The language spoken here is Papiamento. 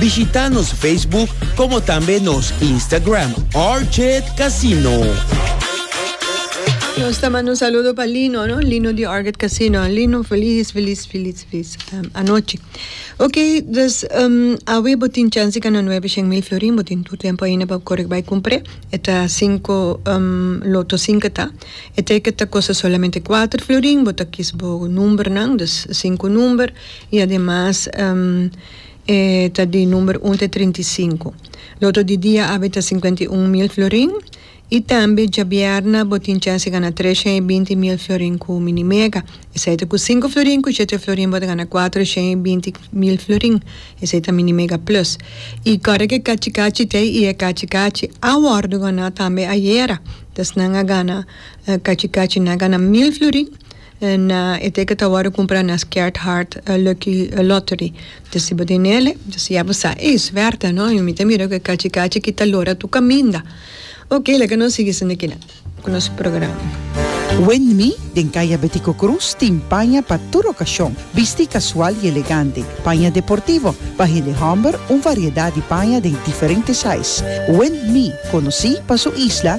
Bishita nos Facebook como tambe nos Instagram Orchid Casino. Nos ta manda un saludo pa Lino, no? Lino di Orchid Casino. Lino, feliz, feliz, feliz, feliz um, anoche. Ok, dus um, awe botin chance ka na 9 shen mil florin, botin tu tempo ainda pa correct by compre. Eta 5 um, loto 5 ta. E ticket ta costa solamente 4 florin, bota kis bo number nan, dus 5 number. Y además, um, E ta di number un te trinta i sinku. Loto di dia awe ta sinkuenta i un mil florin i tambe djabièrna bo tin chèns di gana treshèn i binti mil florin ku Minimega. Esei ta ku sinku florin ku shete florin bo ta gana kuatreshèn i binti mil florin. Esei ta Minimega Plus. I kòrda ku e kachi kachi ta ei i e kachi kachi a wòrdu gana tambe ayera. Dòs nan a gana kachi kachi nan a gana mil florin. En e te ke ta wòrdu kumpra na Scared Heart Lucky Lottery. Ta si bo tin nele, ta si ya bo sa, Ei, swerte no, i mi ta mira ku e kachi kachi aki ta lora tur kaminda. Oke, laga nos sigui sinda kila ku nos programa. Wendmi den Kaya Betico Cruz tin paña pa tur okashon, bisti kasual i elegante, paña deportivo, pa hende hòmber un variedat di paña den diferente sais. Wendmi, konosí pa su isla